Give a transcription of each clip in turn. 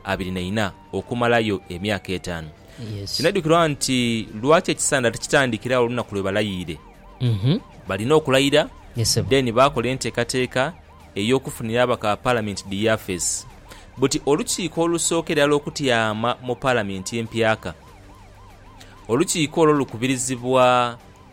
abiri na ina okumalayo emyaka etaanu. Kinaidhukirwa nti lwaki ekisanda tikitandikira agho olunaku lwe balayiire? Balina okulayira, then baakola enteekateeka ey'okufunira abaka Palamenti dhi yafeesi. Buti olukiiko olusooka irala okutyama mu Palamenti empyaka. Olukiiko olwo lukubirizibwa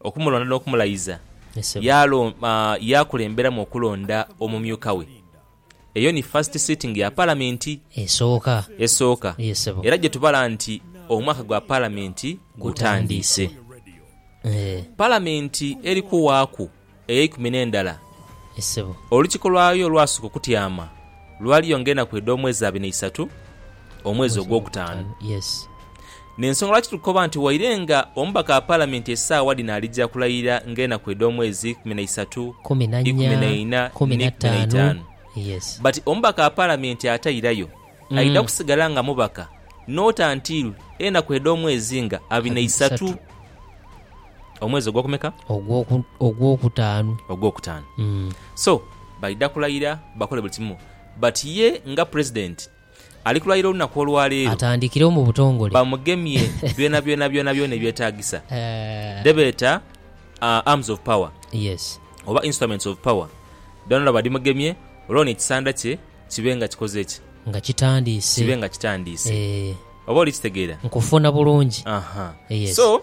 Okumulonda n'okumulayiza, yaakulemberamu okulonda omumyuka we. Eyo ni first sitting ya Palamenti esooka era gyetubala nti omwaka gwa Palamenti gutandiise. Palamenti eri kuwaaku eyeikumi n'endala, olukiiko lwayo olwasooka okutyama lwali yo ng'enaku edh'omwezi abiri na isatu, omwezi ogwokutaanu. N'ensonga lwaki tuli kukoba nti waire nga omubaka wa Palamenti esaawa dhino alija kulayirira ng'enaku edh'omwezi ikumi na isatu, ikumi na ina, ni ikumi na itaanu. But omubaka wa Palamenti atairayo aidha kusigala nga mubaka not until enaku edh'omwezi nga abiri na isatu. Omwezi ogwokumeka? Ogwoku, ogwokutaanu. Ogwokutaanu. Mm. So, baidha kulayira bakole buli kimu. But ye nga President, ali kulayira olunaku olwaleero. Atandikirewo mu butongole. Bamugemye byonabyona byonabyona ebyetaagisa. Eh. Dhebeeta uh, arms of power. Yes. Oba instruments of power. Dhoonadhoona badhimugemye, olwoono ekisanda kye kibe nga kikoze ki? Nga kitandiise. Kibe nga kitandiise. Eh. Oba oli kitegeera? Nkufuna bulungi. Aha. Yes. So.